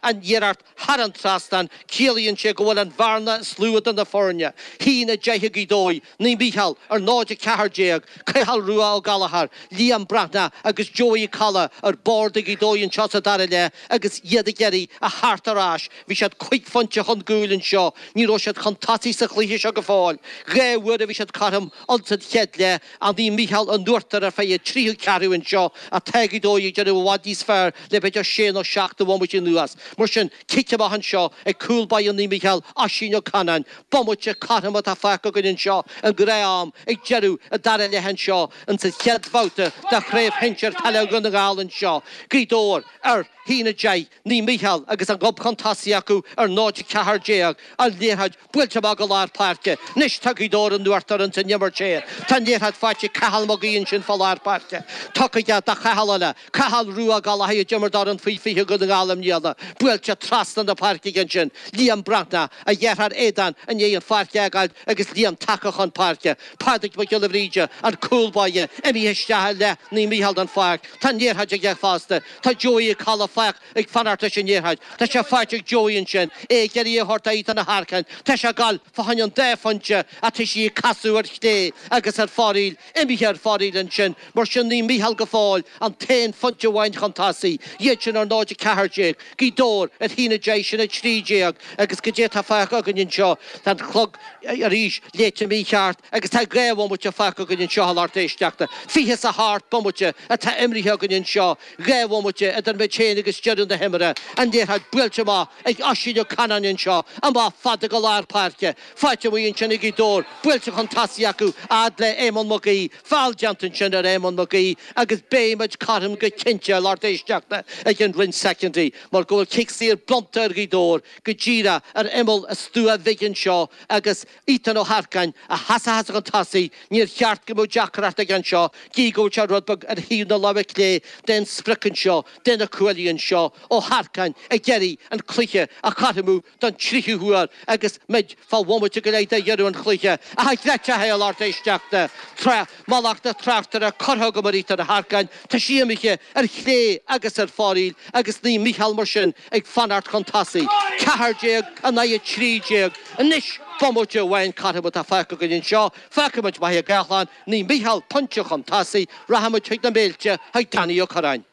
An iarracht thar an trasnán, ciallaíonn sé go bhfuil an bhearna is lú idir na foirne, 1-10 ag Gaoth Dobhair, Naomh Mícheál, ar 0-14, Cathal Rua Ó Gallchóir, Liam Breathnach agus Joey Ó Colla ar bord ag Gaoth Dobhair anseo sa dara leath agus iad ag iarraidh a theacht ar ais, bhí siad cúig phointe chun gcúil anseo, ní raibh siad chun tosaigh sa chluiche seo go fóill, dhá uair a bhí siad cothrom ins an chéad leath, Naomh Mícheál in uachtar ar feadh an tríú ceathrú anseo, ach tá Gaoth Dobhair ag déanamh i bhfad níos fearr Le b'fhéidir sé nó seacht de bhomaití anuas. Mar sin, cic amach anseo ag cúl báire Naomh Mícheál, Oisín Ó Canainn, bomaite cothrom atá fágtha againn anseo den ghnáth-am ag deireadh an dara leath anseo ins an chéad bhabhta de Chraobh Shinsir Peile Dhún na nGall anseo, Gaoth Dobhair, ar 1-10, Naomh Mícheál agus an gob chun tosaigh acu ar 0-14 an liathróid Buailte amach go lár páirce. Anois tá Gaoth Dobhair in uachtar ins an imirt saor. Tá an liathróid faighte ag Cathal Mag Aoidh ansin fá lár páirce. Tugtha aige do Chathal eile. Cathal Rua Ó Gallchóir a d'imir d'fhoireann faoi 20 Dhún na nGall i mbliana. Buailte trasna na páirce aige ansin. Liam Breathnach, a dheartháir Aodán i ndiaidh an pháirc a fhágáil agus Liam tagtha chun páirce. Pádraig Mac Giolla Bhríde, an cúl báire, imithe isteach i leath Naomh Mícheál den pháirc. Tá an liathróid aige fosta. Tá Joey Ó Colla ag fanacht leis an liathróid. Tá sé faighte ag Joey ansin, é ag iarraidh a thabhairt do Ethan Ó hEarcáin. Tá sé ag dul fá choinne an dá phointe ach tá sí ag casadh ar chlé agus ar fóraoil, imithe ar fóraoil ansin, mar sin Naomh Mícheál go fóill an t-aon phointe amháin chun tosaigh, iad sin ar 0, 14, Gaoth Dobhair ar 1, 10, sin 13 agus goidé atá fágtha againn anseo, tá an clog arís léite mícheart agus tá dhá bhomaite fágtha againn anseo a lucht éisteachta. Fiche is a hocht bomaite atá imrithe againn anseo. Dhá bhomaite idir muid féin agus deireadh na himeartha, an liathróid buailte amach ag Oisín Ó Canainn anseo, amach fada go lár páirce, faighte amuigh ansin ag Gaoth Dobhair, buailte chun tosaigh acu a fhad le Éamonn Mac Aoidh, feall déanta ansin ar Éamonn Mac Aoidh agus beidh muid cothrom go cinnte a lucht éisteachta i gcionn roinnt soicindí mar go bhfuil cic saor bronnta ar Ghaoth Dobhair go díreach ar imeall an stua bhig anseo agus Ethan Ó hEarcáin, ag seasamh chun tosaigh, níor cheart go mbeadh deacracht aige anseo, gidh go bhfuil sé rud beag ar thaobh na láimhe clé den sprioc anseo, de na cuaillí anseo. Ó hEarcáin, ag iarraidh an cluiche a chothromú don tríú huair agus muid fá bhomaite go leith de dheireadh an chluiche. Ach an gcreidfeadh sibh é, a lucht éisteachta! Tá mallacht an tráchtaire curtha agam ar Ethan Ó hEarcáin, tá sí imithe, ar chlé agus ar fóraoil, agus Naomh Mícheál mar sin, ag fanacht chun tosaigh, ceathair déag in aghaidh a trí déag, anois, bomaite amháin cothrom atá fágtha againn anseo, fágfaidh muid Machaire Gathlán Naomh Mícheál pointe chun tosaigh, rachaimid chuig na Méilte, chuig Danny Ó Curráin.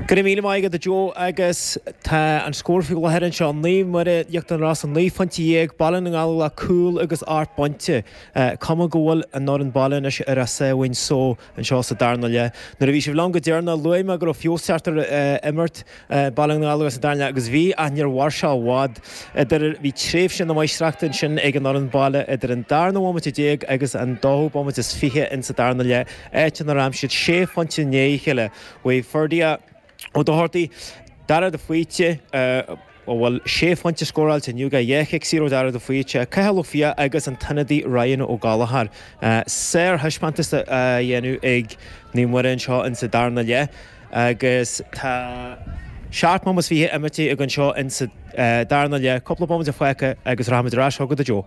Go raibh míle maith agat a Joe agus tá an scór faoi láthair anseo, Naomh Muire, Íochtar na Rosann naoi phointe dhéag, Baile na nGallóglach cúl agus ocht bpointe, cuma go bhfuil an fhoireann baile anois ar a sáimhín só. Anseo sa darna leath. Nuair a bhí sibh liom go deireanach, luaigh mé go raibh feabhas ag teacht ar imirt Baile na nGallóglach sa darna leath agus bhí, ach níor mhair seo i bhfad. Idir, bhí tréimhse na máistreachta ansin ag an fhoireann baile idir an darna bhomaite déag agus an dóú bomaite is fiche in sa darna leath, áit inar aimsigh siad sé phointe i ndiaidh a chéile. Mhaígh Ferdia. Ó Dochartaí, Dara de Faoite, a bhfuil sé phointe scóráilte inniu aige, dhá chic saor ó Dara de Faoite, Cathal Ó Fiaich agus an t-ionadaí Ryan Ó Gallachóir. Sárthaispeántas á dhéanamh ag Naomh Muire anseo ins sa darna leath agus tá seacht mbomaite is fiche imirtí againn anseo ins sa darna leath, cúpla bomaite fágtha agus rachaimid ar ais chugat a Joe.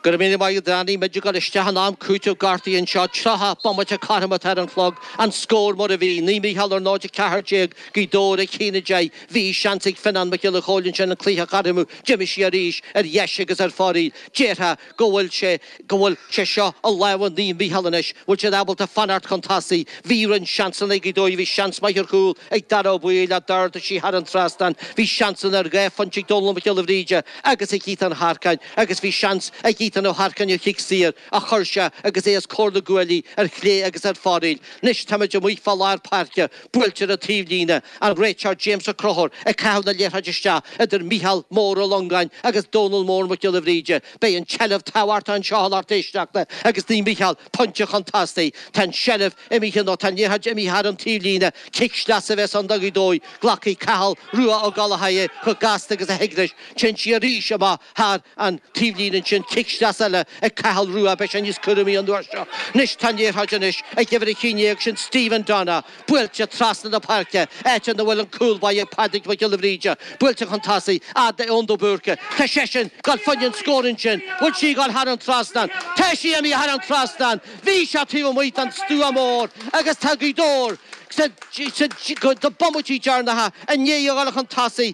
Go raibh míle maith agat Danny, muid ag gabháil isteach in am cúitimh gortaithe anseo, 30 bomaite cothrom atá ar an chlog, an scór mar a bhí, Naomh Mícheál ar 0:14, Gaoth Dobhair a haon a deich, bhí seans ag Fionnán Mac Giolla Chóill ansin an cluiche a chothromú, d'imigh sí arís ar dheis agus ar fóraoil, déarfá go bhfuil sé, go bhfuil sé seo i lámha Naomh Mícheál anois, bhfuil siad ábalta fanacht chun tosaigh, bhí roinnt seansanna ag Gaoth Dobhair, bhí seans maith ar chúl ag Dara Ó Baoill ach d'ardaigh sí thar an trasnán, bhí seansanna ar dhá phointe ag Dónal Mac Giolla Bhríde agus ag Ethan Ó hEarcáin, agus bhí seans ag Ethan Ó hEarcáin a chic saor a chuir sé agus é os comhair na gcuaillí ar chlé agus ar fóraoil. Anois táimid amuigh fá lár páirce, buailte le taobhlíne, an réiteoir James Ó Conchúir ag caitheamh na liathróide isteach idir Micheál Mór Ó Longáin agus Dónal Mór Mac Giolla Bhríde. Beidh an tseilbh tábhachtach anseo a lucht éisteachta agus Naomh Mícheál, pointe chun tosaigh, tá an tseilbh, Imithe nó tá an liathróid imithe thar an taobhlíne. Cic sleasa a bheas ann do Ghaoth Dobhair. Glacfaidh Cathal Rua Ó Gallchóir é chomh gasta agus a thig leis. Téann sí arís amach thar an taobhlíne ansin. Cic sleasa eile ag Cathal Rua. Beidh sé níos cúramaí an uair seo. Anois tá an liathróid anois ag uimhir a haon déag, sin Stephen Donna, buailte trasna na páirce, áit ina bhfuil an cúl báire Pádraig Mac Giolla Bhríde. Buailte chun tosaigh, fhad le Eoin de Búrca. Tá seisean ag gabháil fá choinne an scór ansin. An bhfuil sí ag gabháil thar an trasnán. Tá sí imithe thar an trasnán! Bhí sé taobh amuigh den stua mór agus tá Gaoth Dobhair sna bomaití deireanacha i ndiaidh a dhul chun tosaigh